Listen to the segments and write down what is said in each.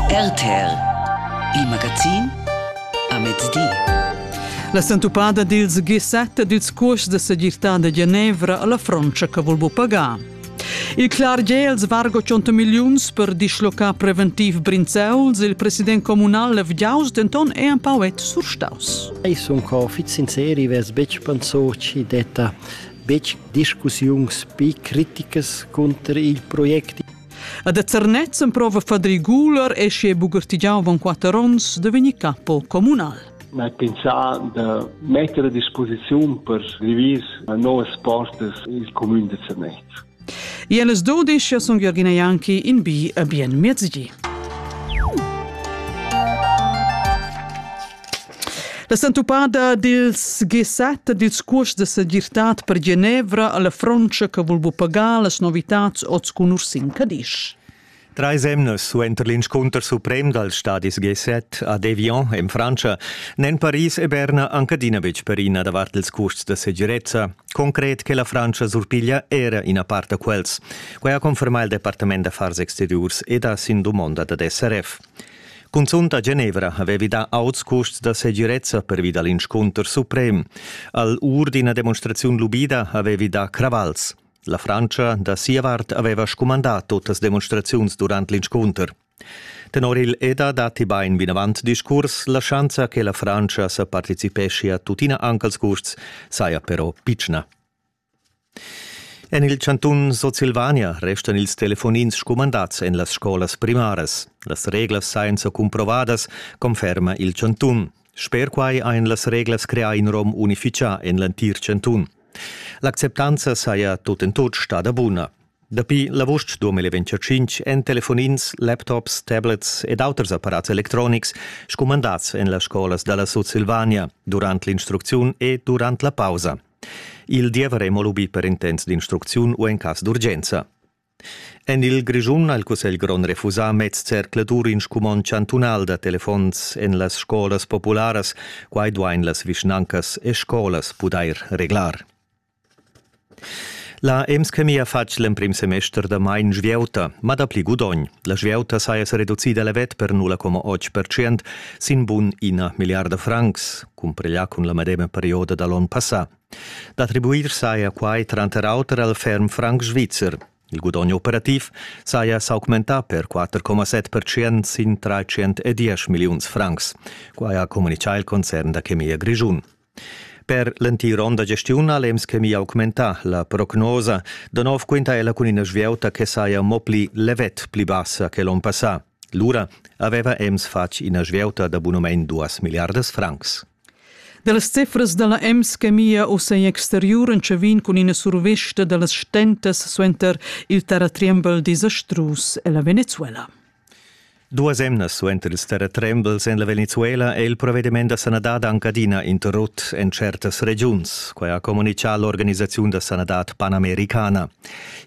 RTL Il magazin amez di. La sentupada dils gisetta dils curs de segirtà de Genevra alla Frontscha che vul bu pagar. Il clar gels vargo 100 milliuns per dislocar preventiv Brinzeuls, il president comunal Levgiaus denton è un pauet surstaus. Ei sun co fit sinceri, ves betg penso ci detta betg discussiuns pi criticas contro il project. A da Zernez emprova Fadri Guler e si è bugartigiau von quatter onns da vegnir capo communal. Ma pensà da mettere a disposizione per scrivere nuove poste il comune di Zernez. E les 12 sono Jörgina Janki in B a bien mezdi. La sentupada dils G7 dils curs de segirtad per Genevra alla Frontscha che vul bu pagar las novitads oz cun Ursin Cadisch. Drei semnas suenter l'inscunter suprem dals stadis G7 ad Evian en Frantscha n'èn Paris e Berna anche adina betg perina davart ils curs da segirezza. Concret che la Frantscha surpiglia era ina part da quels. Quai ha confermà il Departament d'affars exteriurs ed ha sin dumonda dad SRF. Cunzunt a Genevra havevi dà auts custs da segirezza pervi dal inscunter suprem. Al ur d'ina demonstraziun lubida havevi dà cravals. La Frantscha da sia vart aveva scumandà tuttas demonstraziuns durant l'inscunter. Tenor il EDA datti bain vinavant discurs, la schanza che la Frantscha sa participescia tuttina anche als custs saja però pitschna. En il chantun Sutsilvania restan ils telefonins scumandads en las scolas primaras. Las reglas sajan sa cumprovadas, conferma il chantun. Sper quai ein las reglas creà in rom unificà en l'entir chantun. L'acceptanza saja tut en tut stada buna. Dapi l'avust 2025 èn telefonins, laptops, tablets ed auters apparats electronics scumandats en las scolas da la Sutsilvania durant l'instrucziun e durant la pausa. Il diever ei mo lubi per intents d'instrucziun u en cass d'urgenza. En il Grischun ha il Cussegl grond refusà meds zercladur in scumond chantunal da telefons en las scolas popularas. Quai duain las vischnancas e scolas pudair reglar. La EMSCMI ha fatg l'emprim semester da mai in svieuta, ma dapli gudogn. La svieuta saja sa reducida levet per 0,8% sin bun ina milliarda francs. cumprià cun la medema perioda da l'onn passà. D'attribuir saja quai tranter auter al ferm franc svizzer. Il gudogn operativ saja s'augmentà per 4,7% sin 310 milliuns francs. Quai ha communitgà il concern da chemia grischun. Per l'entir onn da gestiun ha l'EMS Chemia augmentà la prognosa. Da nov quinta ella cun ina svieuta che saja mo pli levet pli bassa che l'onn passà. Lura haveva Ems fatg ina svieuta da bunamein duas milliardas francs. Dallas cefras dalla Ems che mia uss egl exteriur entschavin cun ina survesta dallas stentas suenter il terratriembel disastrus ella Venezuela. Duas emnas suenter ils terratrembels en la Venezuela è il provediment da sanadad anc adina interrut en certas regiuns. Quai ha communitgà l'organisaziun da sanadad panamericana.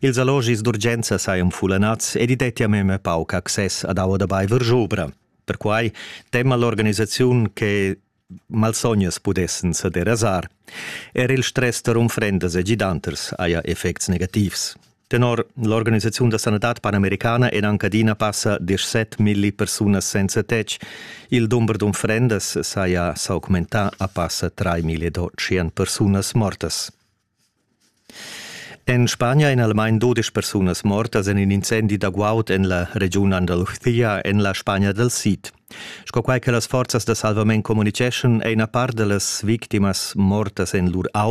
Ils allogis d'urgenza sajan fullanads ed i dettia memia pauc access ad aua da baiver schubra. Perquai tema l'organisaziun che malsognas pudessan sa derasar. Er il stress tar unfrendas e gidanters haja effects negativs. Tenor l'organisaziun da sanadad panamericana en anc adina passa 17 milli persunas senza tetg. Il dumber d'unfrendas saja s'augmentà a passa 3 million persunas mortas. En Spagna èn almain dudesch persunas mortas en in incendi da guaud en la regiun Andalusia en la Spagna dal Sid. Sco quai che las forzas da salvament communiceschan, è ina part da las victimas mortas en lur auto